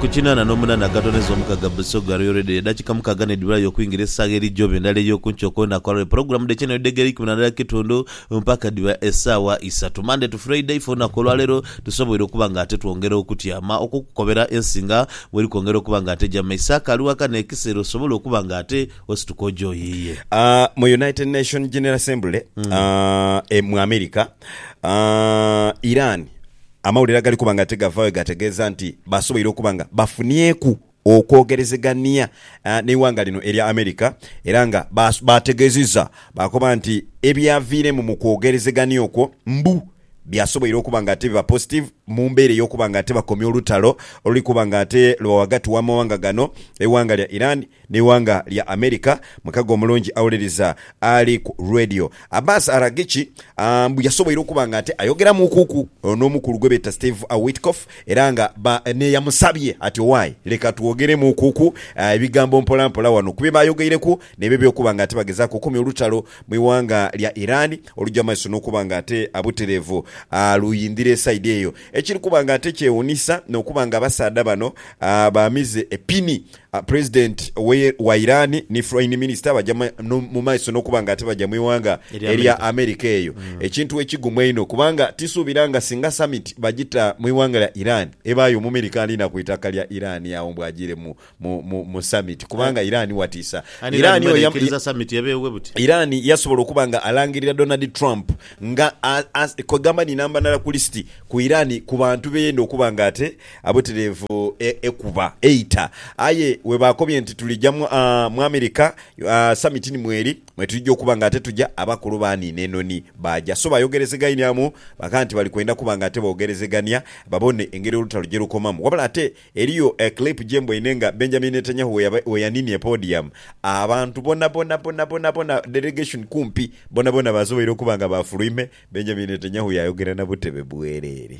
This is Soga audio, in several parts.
Ku kinaana n'omunaana agatoneza omukaga Busoga Royal Radio edakika mukaga nedibulayo okwingira esaawa eri joba endala eyokunkyo kulunaku olwalero pulogulamu dhekina edhegere eikumi nandala kitundu mpaka dhiba esaawa isatu Monday to Friday ife olunaku olwalero tusoboire okuba nga ate twongera okutyama okukukobera ensi nga bweri kwongera okuba nga ate eja mumaiso akaali waka nekisera osobole okuba nga ate osituka oja oyiiye. Mu United Nation General Assembly mu America, Iran Amawulire agali kuba nga tigavaayo gategeeza nti basoboire okuba nga bafunieku okwogerezegania n'eighanga lino erya America era nga baategeezizza baakoba nti ebyaviiremu mu kwogerezegania okwo mbu byasoboire okuba nga ate biba positive mu mbeera ey'okuba nga ate bakomya olutalo oluli kuba nga ate luba ghagati w'amawanga gano, eighanga lya Iran. N'eighanga lya America, mukago omulungi awuliriza ali ku Radio. Abbas Araghchi mbu yasoboire okuba nga ate ayogeramuukuku n'omukulu gwe beeta Steve Witkoff era nga n'eyamusabye ati Owaaye leka twogeremuukuku ebigambo mpolampola wano ku bye baayogeireku n'ebyo eby'okuba nga ate bagezaaku okukomya olutalo mu ighanga lya Iran olugya mu maiso n'okuba nga ate butereevu luyindhira esaidi eyo. Ekiri kuba nga ate kyewuunhisa n'okuba nga abasaadha bano baamize epini President wa Iran ni Foreign Minister baja mu maiso n'okuba nga ate baja mu ighanga erya America eyo, ekintu ekigumu einho kubanga tisuubira nga singa Summit bagita mu ighanga lya Iran ebaayo Omumerika ali na ku itaka lya Iran agho mbu ajiire mu Summit kubanga Iran watiisa. Iran yasobola okuba nga alangirira Donald Trump nga kwegamba ni namba ndala ku list ku Iran ku bantu beyenda okuba nga ate Abweteleevu ekuba eita. Aye webaakobye nti tulija mu America summit ni mweri mwetulija okuba nga ate tuja abakulu baaniina enoni baaja. So bayogerezegainiamu baka nti bali kwenda kuba nga ate bogerezegania babone engeri olutalo gyerukomamu. Wabula ate eriyo clip gyemboine nga Benjamin Netanyahu weyaninie podium abantu bonabona bonabona delegation kumpi bonabona basoboire okuba nga baafulwime Benjamin Netanyahu yaayogera nabutebe bwerere.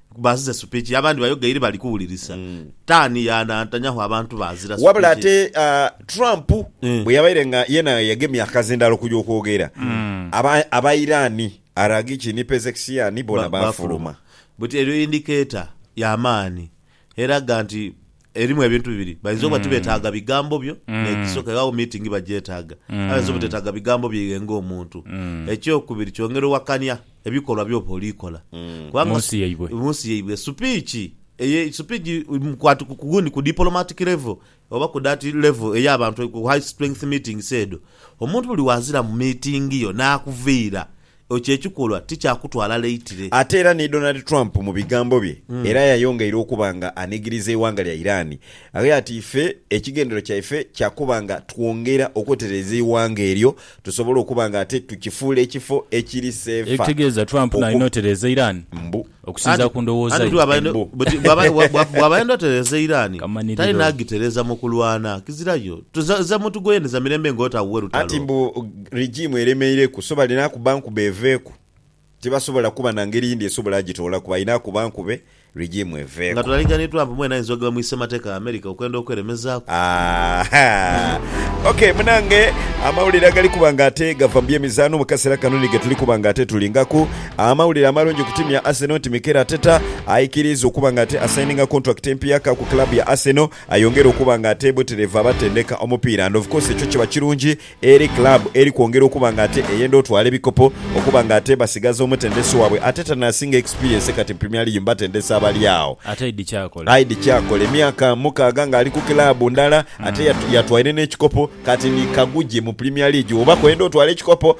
Bazize supiki abandi bayogeire bali kuwulirisa tani yanantanyaho abantu bazira supiki. Wabula ate Trump bwe yabaire nga yena yagemye akazindaalo okuja okwogera, aba Iran, Araghchi ni Pezeksian bona baafuluma. But eyo indicator ya maani eraga nti Erimu ebintu bibiri, bainza oba tibetaaga bigambo byo n'ekisoka iwe agho meeting bagyetaaga. Aye bainza obutetaaga bigambo byo iwe ng'omuntu. Ekyokubiri kyongera owakania ebikolwa by'oba oli kola. Kubanga Munsi yaibwe. munsi yaibwe supiiki eye supiiki mukwate ku gundi ku diplomatic level oba ku that level ey'abantu ku high strength meetings edho, omuntu buli wazira mu meeting yo n'akuviira Ekyo ekikolwa ti kya kutwala leitire. Ate era ni Donald Trump mu bigambo bye era yayongeire okuba nga anigiriza eighanga lya Iran ghe ati ife ekigendero kyaife kya kuba nga twongera okwetereeza eighanga eryo tusobole okuba nga ate tukifuula ekifo ekiri seefa Ekitegeeza Trump nalina oku otereeza Iran? Mbu. Okusinzira ku ndowooza ye, embu. Bwaba ayenda otereeza eiraani, talina agitereeza mu kulwana. Kizira yo. Za muntu gwoyendeza mirembe nga otaawuwe lutalo. Anti mbu rigiimu eremeireku, so balina kuba nkube eveeku. Tibasobola kuba na ngeri yindi esobola agitoolaku, balina kuba nkube rigiimu eveeku. Nga tulalinga ni Trump mwene ayinza ogaba mu issemateka ya America okwenda okweremezaaku. Ahaa. Ok munange, amawulire agali kuba nga ate gava mu by'emizaano mu kaseera kano ni getuli kuba nga ate tulingaku. Amawulire amalungi ku tiimu ya Arsenal nti Mikel Arteta aikiriiza okuba nga ate asaininga kontulakiti empiaka ku club ya Arsenal ayongere okuba nga ate buterevu abatendeka omupiira and of course ekyo kiba kirungi eri club eri kwongera okuba nga ate eyenda otwala ebikopo okuba nga ate basigaza omutendesi wabwe Arteta nasinga experience kati mu Premier League mu batendesi abali agho. Ate aidhi kyakola. Aidhi kyakola emyaka mukaaga nga ali ku club ndala ate yatwaire n'ekikopo kati ni kagugye mu Premier League oba kwenda otwala ekikopo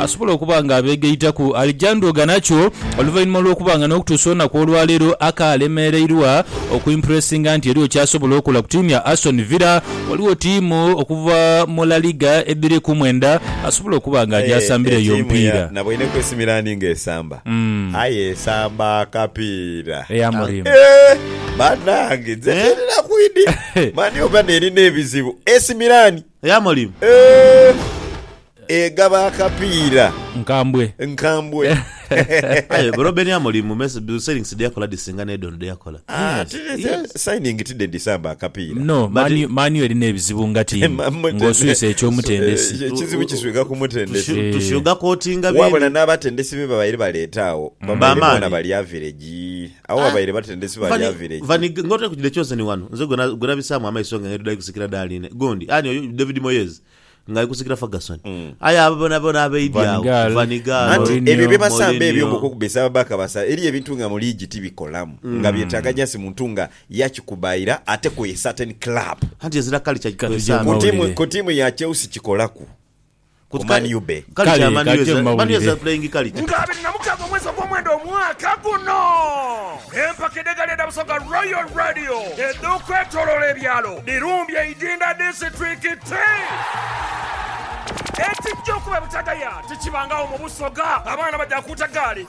asobola okuba nga abeegaitaku Alejandro Garnacho oluvainhuma lw'okuba nga n'okutuusa olunaku olwaleero akaalemereirwa okwimpuresinga nti eriwo ky'asobola okola ku tiimu ya Aston Villa. Ghaligho tiimu okuva mu La Liga edhiri ku mwenda asobola okuba nga aja asambira eyo omupiira. Naboineku AC Milan ng'esamba aye esamba kapiira. Eya Amorim. Eeh! Banange! Nze nirina kwidi. Mani oba nerina ebizibu! AC Milan. Ey'amalimu. Eeh, egaba akapiira. Nkambwe. Nkambwe. Aye bro Ben Amorim me signings dheyakola dhisinga n'edho ono dheyakola. Signing ti dhedhisamba akapiira. No, Man U erina ebizibu nga tiimu, ng'oswise eky'omutendesi. Ekizibu kiswika ku mutendesi. Tushugakotinga bindi. Wabula n'abatendesi be babaire baleeta agho, babaire boona bali averegyi. Agho babaire batendesi ba lya village. Vani nga otali kujidha Chosen wano nze gwe nabisaamu amaiso nga ng'endhuda eri kusikira Darline gundi ani oyo David Moyes nga ali kusikira Ferguson. Aye abo boonaboona abaidhi agho, Van Gaal, Van Gaal, Anti ebyo Mourinho, bye basambe ebyo Mourinho. ng'okwokubesa ababaaka basa eriyo ebintu nga mu liigi tibikolamu nga byetaaga just muntu nga yakikubaira ate ku a certain club. Anti ezira culture Kati kwesambe. Ku tiimu, gyamawulire. ku tiimu ya Chelsea kikolaku. ku Man U be. Kale kajje mbawulire. Nga abiri na mukaaga omwezi ogwomwenda omwaka guno, empaka edh'egaali edha Busoga Royal Radio edh'okwetoloola ebyalo dhirumbye e Idinda disiturikiti. Ekijja okuba ebutagaya tikibangagho mu Busoga, abaana baja kuuta gaali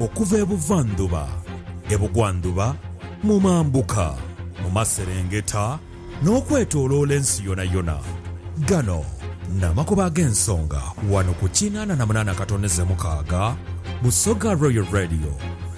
Okuva e buvandhuba, e bugwandhuba, mu mambuka, mu maserengeta, n'okwetooloola ensi yonayona. Gano n'amakubo ag'ensonga wano ku kinaana na munaana katoneze mukaaga, Busoga Royal Radio,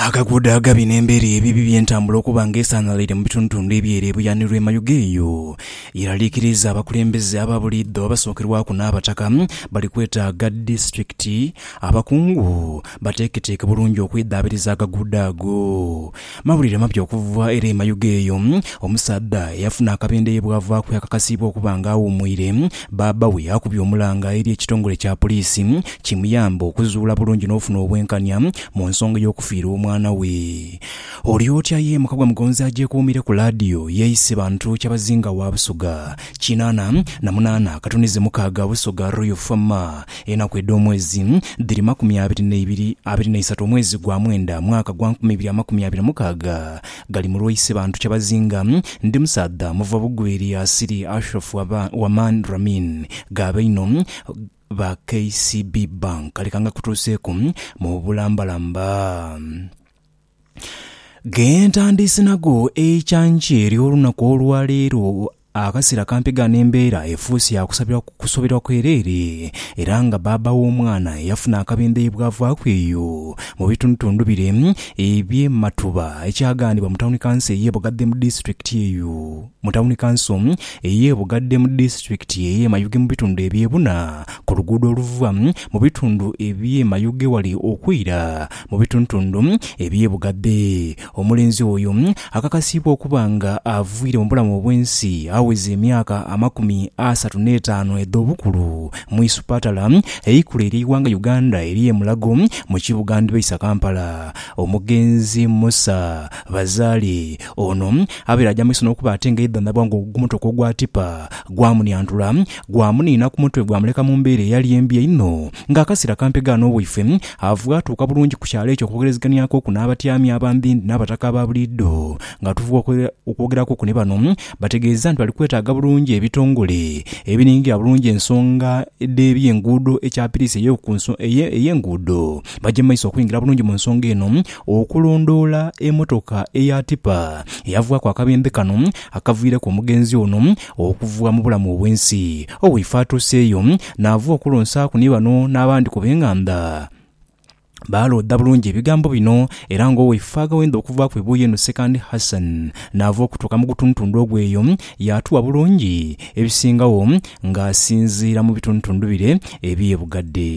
Akaguudo agabi n'embeera ebibi by'entambula okuba nga esaanhalaire mu bitundutundu eby'ere ebuyaanirwa e Mayuge eyo yeraliikiriiza abakulembeze aba buliidho abasookerwaku n'Abataka bali kwetaaga disitulikiti abakungu bateeketeeke bulungi okwedhaabiriza agaguudo ago. Mawulire mapya okuva ere e Mayuge eyo Omusaadha eyafuna akabende ye bwavaaku yakakasiibwa okuba nga awuumwire bbaabba we akubye omulanga eri ekitongole kya Poliisi kimuyambe okuzuula bulungi n'ofuna obwenkanya mu nsonga y'okufiirwa omwana we. Oli otya ye muka gwa Mugonzi agyekuumire ku laadiyo yeeyise bantu kyabazinga wa Busoga kinaana na munaana katunize mukaaga Busoga Royal Fama enaku edh'omwezi dhiri makumi abiri n'eibiri abiri n'eisatu omwezi gwa mwenda mwaka gwa nkumi ibiri amakumi abiri mukaaga gali mu lwaise bantu kyabazinga ndi musaadha muva Bugweri asiri Ashrafu Wamani Ramin ghabaino ba KCB Bank. Leka nga kutuuseeku mu bulambalamba. Ghentandiise nago ekyanjo eri olunaku olwaleero, akasera kampi ghano embeera efuuse ya kusoberwa kwereere era nga baaba w'omwana eyafuna akabindho ye bwavaaku eyo mu bitundutundu bire ebye Matuba ekyaghanibwa mu tawuni kanso eye Bugadhe mu disitulikiti eyo. mu tawuni kanso ey'e Bugadde mu disitulikiti ey'e Mayuge mu bitundu eby'e Buna ku luguudo oluva mu bitundu eby'e Mayuge wali okwira mu bituntundu eby'e Bugadde. Omulenzi oyo akakasiibwa okuba nga aviire mu bulamu obw'ensi aweza emyaka amakumi asatu n'etaanu edh'obukulu mu isupatala eikulu ery'eighanga Uganda ery'e Mulago mu kibuga ndhibaisa Kampala. Omugenzi Musa Bazaale Ono abaire aja mu maiso n'okuba ate nga yaidhandhabwa nga ogumotooka ogwa tipa gwamuniantula, gwamuniina ku mutwe gwamuleka mu mbeera eyali embi einho nga akasiira kampegha n'owaife ava atuuka bulungi ku kyalo ekyo okwogereziganiakoku n'abatyaami abandhindhi n'abataka aba buliidho nga tuva okwogerakoku ni bano bategeeza nti bali kwetaaga bulungi ebitongole ebiningirira bulungi ensonga dh'ebyenguudo ekyapiriisi ey'enguudo baje mu maiso okwingira bulungi mu nsonga eno Okulondoola emotoka eya tipa eyavwaku akabembe kano akaviireku omugenzi ono okuvwa mu bulamu obwensi, Owiife atuuseeyo naava okulonsaaku ni bano n'abandi ku b'enganda baaloodha bulungi ebigambo bino era nga Owiife aghawenda okuvaaku ebuuyi eno Sekandi Hassan naava okutuuka mu gutundutundu ogwo eyo yaatuwa bulungi ebisingagho nga asinziira mu bitundutundu bire eby'e Bugadde.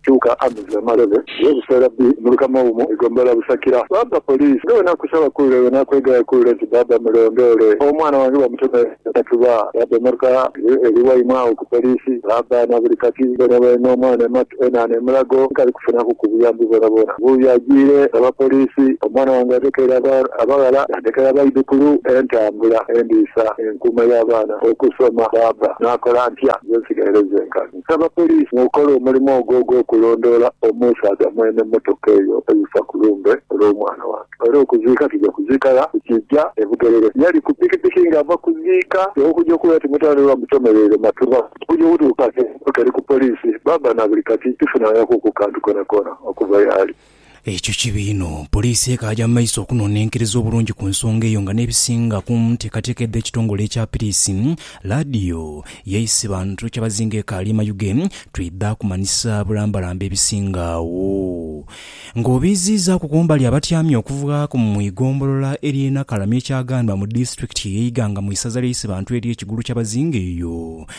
Kyuka Amiza amalebe yo buseera bi mulika mawumu egombolola Busakira. Baba Police nga bwenakusaba kule bwenakwegaya kule nti baba mulondoole omwana wange bamuteme akatuba baba emotoka yo eri waimwe agho ku Police baba nabuli kati bwenobaire nomwana ematu enana emulago nkali kufunaku ku buyambi bwonabwona bu yajiire baba Police omwana wange yadekeire abaghala yadekera abaidhukulu entambula endiisa enkuuma ya baana okusoma baba nakola ntya nze nsigaire zenka Nsaba poliisi mukole omulimu ogwo ogw'okulondoola omusaadha mwene mmotoka eyo eyifa ku lumbe olw'omwana wange. Era okuziika tuja kuziika gha ku kiggya e Bugerere. Yali ku pikipiki ng'ava kuziika. Okuja okuwulira timutandhwa oba mutomereire Matugha. Okuja okutuuka nga emmotoka eri ku poliisi, baaba na buli kati tifunangaku ku kantu koonakoona okuva yaali. Ekyo kibi inho. Poliisi ekaaja mu maiso okunonenkereza obulungi ku nsonga eyo nga n'ebisinga ku nteekateeka edh'ekitongole ekya piriisi, laadiyo, yaisi bantu kyabazinga ekaali mayuge, twidha kumanhisa bulambalamba ebisinga agho. Ng'obiiziizaaku ku mbali abatyami okuvaaku mu igombolola ery'e Nakalami ekyaghanwa mu disitulikiti ey'e Iganga mu isaza ly'eisi bantu ery'e Kigulu kyabazinga eyo,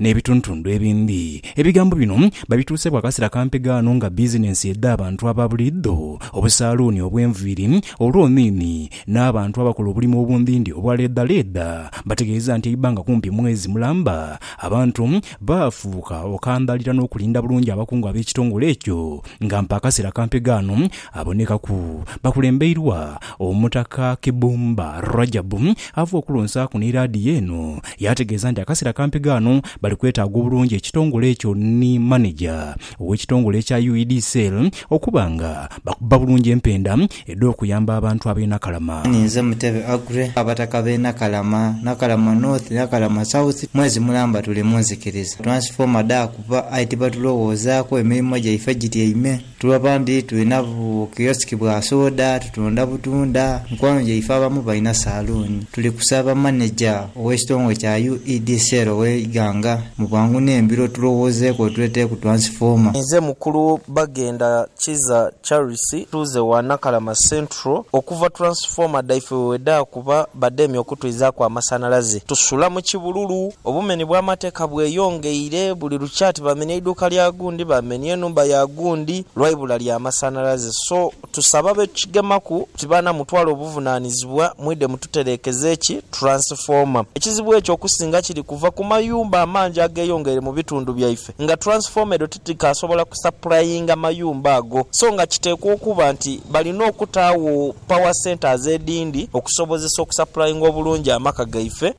n'ebitundutundu ebindi. Ebigambo bino babituusa bwa kasera kampi ghano nga bizinensi edh'abantu aba buliidho, obusaaluuni obw'enviiri, olwomiimi, n'abantu abakola obulimo obundhindhi obwa leedhaleedha bategeeza nti eibanga kumpi mwezi mulamba abantu baafuuka okandhaalira n'okulinda bulungi abakungu ab'ekitongole ekyo nga mpa akasera kampi ghano Abonekaku bakulembeirwa Omutaka Kibumba Rajabu ava okulonsaaku ni laadiyo eno yaategeeza nti akaseera kampi ghano bali kwetaaga obulungi ekitongole ekyo ni maneja ow'ekitongole ekya UED Cell okuba nga bakuba bulungi empenda edh'okuyamba abantu ab'e Nakalama. Ninze Mutebe Aggrey, Abataka b'e Nakalama, Nakalama North, Nakalama South, mwezi mulamba tuli mu nzikiriza. Transformer dhaakuba aye tibatulowoozaako, emirimo gyaife gityaime. Tuli abandi tulina bu kiyosiki bwa soda, tutunda butunda, mikwano gyaife abamu balina saluuni. Tuli kusaba maneja ow'ekitongole kya UEDCL ow'e Iganga mu bwangu n'embiro tulowoozeeku otuleete ku twansifooma. Nze mukulu Bagenda Kiza Charles, ntuuze gha Nakalama Central. petro okuva turansifoma dhaife we wedhaakuba badheemye okutwizaaku amasanhalaze. Tusula mu kibululu. Obumeni bw'amateeka bweyongeire. Buli lukya ati baamenia eiduuka lya gundi, baamenia enhumba ya gundi lwa ibula lya masanhalaze. So, tusaba ab'ekukigemaku nti baana mutwale obuvunaanizibwa mwidhe mututereekeze ki turansifoma. Ekizibu ekyo okusinga kiri kuva ku mayumba amangi ageyongeire mu bitundu byaife nga turansifoma edho tikaasobola kusapurayinga mayumba ago so nga kiteekwa okuba nti balina okutaagho power centres edhindi okusobozesa okusapurayinga obulungi amaka gaife.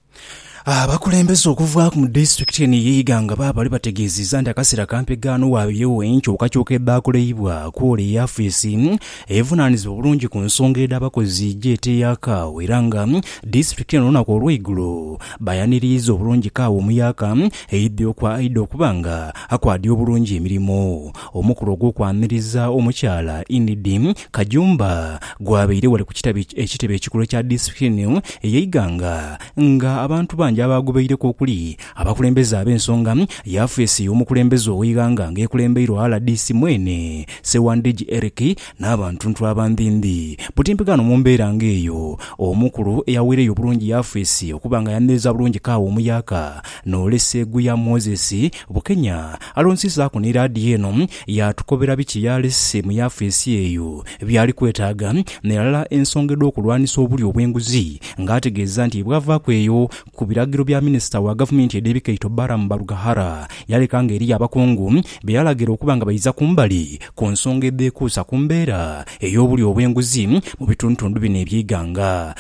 Abakulembeze okuva mu disitulikiti eno eye Iganga baabale bategeezizza nti akaseera kampi ghano waabyewo enkyukakyuka edhaakoleibwa kwole eyafeesi evunaanizibwa obulungi ku nsonga edh'abakozi gy'eteeyakaagho era nga disitulikiti eno olunaku olweigulo bayaniriiza obulungi kaawa omuyaaka Eidhi okwa aidha okuba nga akwaadya obulungi emirimo. Omukolo ogw'okwaniriza omukyala Inidi Kajumba gwabaire ghale ku kitabi ekitebe ekikulu ekya disitulikiti eno eye Iganga nga abantu bangi abaagobeireku okuli abakulembeze ab'ensonga, yafeesi y'omukulembeze ow'eighanga nga ekulembeirwa rdc mwene Ssewandigi Eric n'abantuntu abandhindhi. Butimpi ghano mu mbeera nga eyo, omukulu eyaweireyo obulungi yafeesi okuba nga ayaniriza bulungi kaawa omuyaaka N'olesa eghu ya Moses, bukenya alonsizaaku ni laadiyo eno yaatukobera biki y'alese mu yafeesi eyo by'ali kwetaaga ni ghalala ensonga edh'okulwanisa obulyo obw'enguzi ng'ategeeza nti bwavaaku eyo ku biragiro bya minisita wa gavumenti edh'ebikaito Balaam Barugahara yaleka nga eriyo abakungu be yalagira okuba nga baiza kumbali ku nsonga edhekuusa ku mbeera ey'obulyo obw'enguzi mu bitundutundu bino eby'eighanga.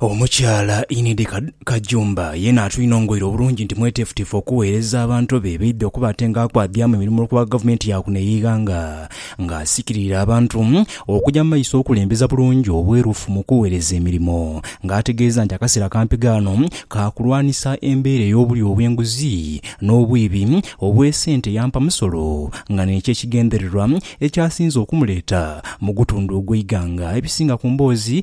Omukyala Enid Kajumba yeena atwinongoire obulungi nti mweteefuteefu okugheereza abantu be baidha okuba ate nga akwadiamu emirimo olwokuba gavumenti ya kuno ey'eighanga nga asikirire abantu okuja mu maiso okulembeza bulungi obwerufu mu kugheereza emirimo nga ategeeza nti akaseera kampi ghano ka kulwanisa embeera ey'obulyo obw'enguzi n'obwibi obw'esente ya mpamusolo nga nekyo ekigendererwa ekyasinze okumuleeta mu gutundu ogw'eighanga. Ebisinga ku mboozi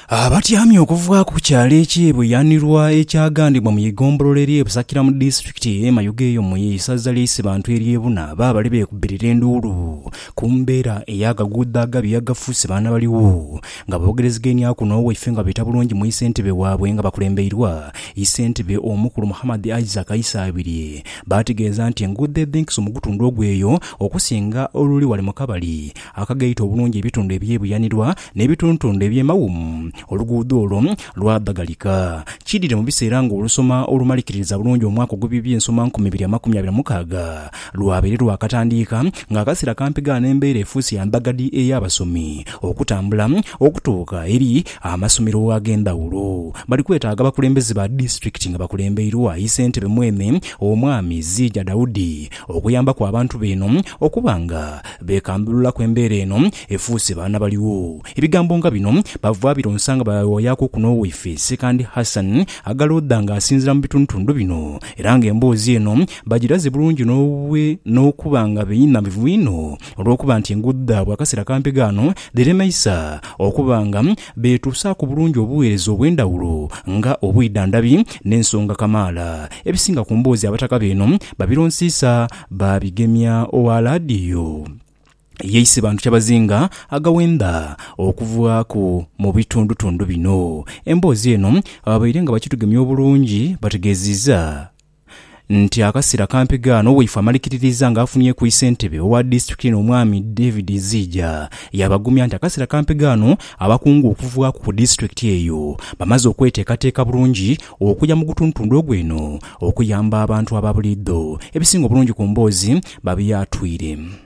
Abatyamye okuvaaku ku kyalo eky'e Buyanirwa ekyagandibwa mu Ighombolola ery'e Busakira mu Disitulikiti ey'e Mayugeyo mu Isaza ly'e Isibantu ery'e Buna baabale beekubbirira enduulu ku mbeera ey'akaguudo agabi agafuuse baanabaligho nga boogerezegainia aku n'owaife nga beeta bulungi mu Isentebe waabwe nga bakulembeirwa Isentebe Omukulu Muhammad Isaac Isaabirye baategeeza nti enguudo edhenkisa omugutundhu ogw'eyo okusinga oluli wale mu kabali akagaita obulungi ebitundu eby'e Buyanirwa n'ebituntundu eby'emawumu, oluguudo olwo lwadhagalika. Kidhire mu biseera ng'olusoma olumalikiririza bulungi omwaka ogw'eby'eby'ensoma nkumi ibiri amakumi abiri na mukaaga lwabaire lwakatandiika ng'akaseera kampi ghano embeera efuuse ya mbagadhi ey'abasomi okutambula okutuuka eri amasomero ag'endhawulo. Bali kwetaaga abakulembeze ba disitulikiti nga bakulembeirwa yi Ssentebe mwene Omwami Ziija Daudi okuyambaku abantu beeno okuba nga beekambululaku embeera eno Efuuse baana baligho. Ebigambo nga bino bava bironsa nga bayawayaku ku n'owaife Ssekandi Hassan Agaloodha nga asinzira mu bitundutundu bino era nga emboozi eno bagiraze bulungi n'okuba nga beinha mivu inho olw'okuba nti enguudo dhaabwe akaseera kampi ghaano dhiremeisa okuba nga beetuusaaku bulungi obuweereza obw'endhawulo nga obwidhandhabi n'ensonga kamaala. Ebisinga ku mboozi Abataka beeno babironsiisa baabigemya ogha laadiyo. yeise bantu kyabazinga agawenda okuvaaku mu bitundutundu bino. Emboozi eno ababaire nga bakitugemya obulungi bategeeziiza nti akaseera kampi gaano waife amalikiririza nga afunyeku isentebe owa disitulikiti eno omwami David Ziija yaabagumya nti akaseera kampi gaano abakungu okuvaaku ku disitulikiti eyo bamaze okweteekateeka bulungi okuja mu gutundutundu ogwo eno okuyamba abantu ababuliidho. Ebisinga obulungi ku mboozi babyatwire.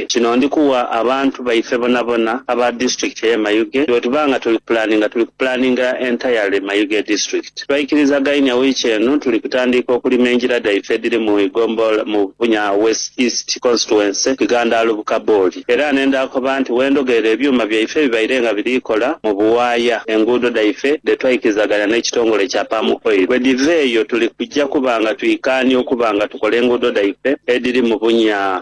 Kino ndi kuwa abantu baife bonabona aba district eye Mayuge, bwetuba nga tuli kupulaninga tuli kupulaninga entirely Mayuge district. Twaikirizagainia wiiki eno tuli kutandiika okulima engira dhaife edhiri mu Igombol mu Bunya West East Constituency Kigandaalu Bukabooli era nendhakoba nti wendhogeera ebyuma byaife bibaire nga biri kola mu buwaaya enguudo dhaife dhetwaikirizagania n'ekitongole kya Palm Oil. Bwedhiva eyo tuli kuja kuba nga twikaania okuba nga tukola enguudo dhaife edhiri mu Bunya,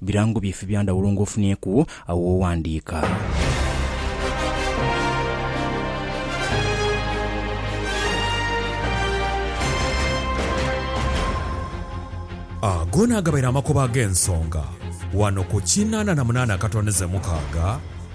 Birango byaife bya ndhawulo ng'ofunyeeku agho w'oghandiika. Ago naagabaire amakoba ag'ensonga wano ku kinaana na munaana akatondeze mukaaga.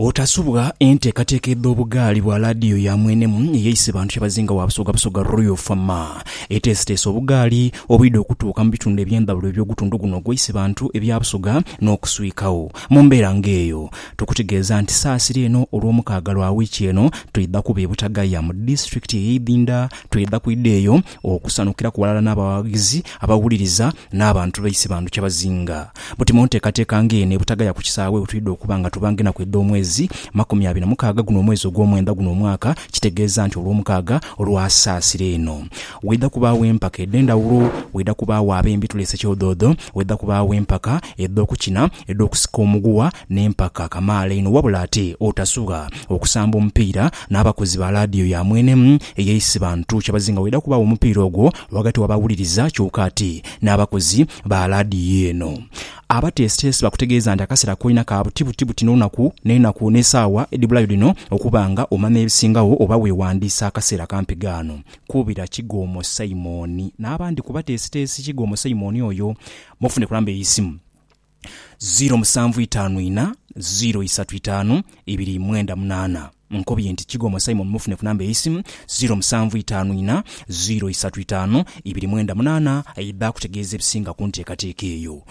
Otasubwa enteekateeka edh'obugaali bwa laadiyo ya mwenemu eyeise bantu kyebazinga wa Busoga Busoga Royal Fama eteesiteese obugaali obwidha okutuuka mu bitundu eby'endhawulo eby'ogutundu guno ogweise bantu ebya Busoga n'okuswikagho mu mbeera ng'eyo. Tukutegeeza nti saasira eno Olwomukaaga lwa wiiki eno twidha kuba e Butagaya mu disitulikiti ey'e Idhinda. Twidha kwidha eyo Okusanukiraku ghalala n'abawaghizi abawuliriza n'abantu baise bantu kyabazinga. Buti mu nteekateeka ng'eno ebutagaya ku kisaawe wetwidha okuba nga tuba ng'enaku edh'omwezi makumi abiri na mukaaga guno omwezi ogw'omwenda guno omwaka kitegeeza nti Olwomukaaga olwa Saasira eno waidha kubaagho empaka edh'endhawulo, waidha kubaagho ab'embi tuleese kyodhoodho, waidha kubaagho empaka edh'okukina, edh'okusika omuguwa n'empaka kamaala einho wabula ate otasugha okusamba omupiira n'abakozi ba laadiyo ya mwene eya Isibantu kyebazinga waidha kubaagho omupiira ogwo ghagati w'abawuliriza kyoka ate n'abakozi ba laadiyo eno abateesiteesi bakutegeeza nti akaseera koina ka buti buti buti n'olunaku n'enaku n'esaawa edhibulayo dhino okuba nga omanya ebisingagho oba weewandiisa akaseera kampi ghano kuubira Kigoomo Simon n'abandi ku bateesiteesi Kigoomo Simon oyo mufune ku namba ey'eisimu. ziro musanvu itaanu ina ziro isatu itaanu ibiri mwenda munaana. Nkobye nti kigwa omwo Simon mufune ku namba ey'eisimu ziro musanvu itaanu ina ziro isatu itaanu ibiri mwenda munaana aidhe akutegeeze ebisinga ku nteekateeka eyo.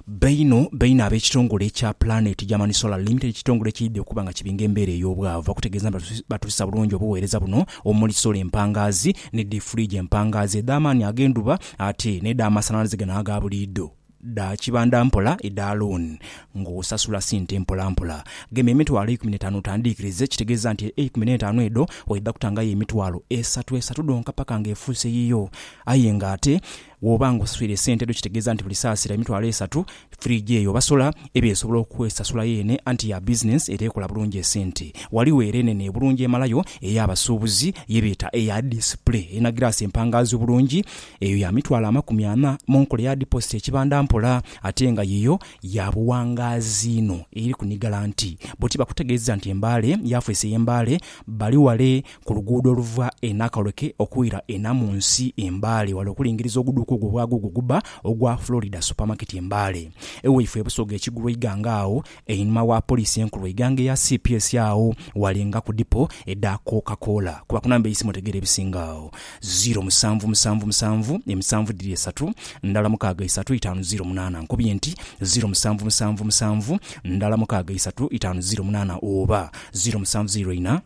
Baino baino ab'ekitongole ekya Planet Germany Solar Limited ekitongole ekyaidha okuba nga kibinga embeera ey'obwavu bakutegeeza nti batuusa bulungi obuweereza buno omuli solar empangaazi ni dii fridge empangaazi edh'amaani ag'endhuba ate n'edhamasanhalaze gano aga buliidho. dha kibanda mpola edha loan nga osasula sente mpola mpola. Gema emitwalo eikumi n'etaanu otandiikirize, ekitegeeza nti eikumi n'etaanu edho oidha kutangayo emitwalo esatu esatu dhonka paka nga efuuse yiyo. Aye nga ate bw'oba nga osaswire esente edho kitegeeza nti buli saasira emitwalo esatu, fridge eyo oba solar eba esobola okwesasula yeene anti ya business era ekola bulungi esente. Ghaligho era enene obulungi emalayo ey'abasuubuzi ye beeta eya display erina giraasi empangaazi obulungi Eyo ya mitwalo amakumi ana mu nkola eya dipositi ekibanda mpola, ate nga yiyo ya buwangaazi inho eri ku ni Galanti. Bbo tibakutegeeza nti embaale yafeesi ey'embaale bali wale ku luguudo oluva e Nakawleke okwira e Namunsi e Mbale wale okulingiriza oguduuka ogwo bwagwo ogwo ogubba ogwa Florida Supermarket e Mbale. Ewaifwe e Busoga e Kigulu Iganga agho Einhuma wa poliisi enkulu eighanga eya cps agho walenga ku dipo edha Coca Cola kuba ku namba eisimu otegeera ebisinga agho. Ziro musanvu musanvu musanvu emisanvu dhiri esatu ndala mukaaga isatu itaanu ziro munaana Nkubye nti ziro musanvu musanvu musanvu ndala mukaaga isatu itaanu ziro munaana oba ziro musanvu ziro ina.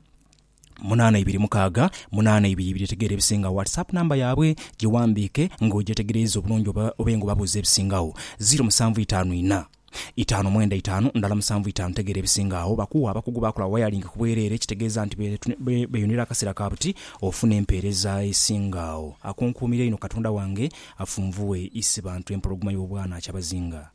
munana ibiri mukaaga munana ibiri ibiri tegeera ebisingagho whatsapp number yabwe gighandiike nga ogyetegereiza obulungi oba obe nga obabuuza ebisingagho ziro musanvu itaanu inha itaanu mwenda itaanu ndhala musanvu itaanu tegeera ebisingagho bakuwa abakugu bakola wayalingi ku bwereere ekitegeeza nti beyunira akaseera ka buti ofuna empeereza esingagho akunkuumira einho katonda wange afunvughe isi bantu empologoma y'obwana kyabazinga.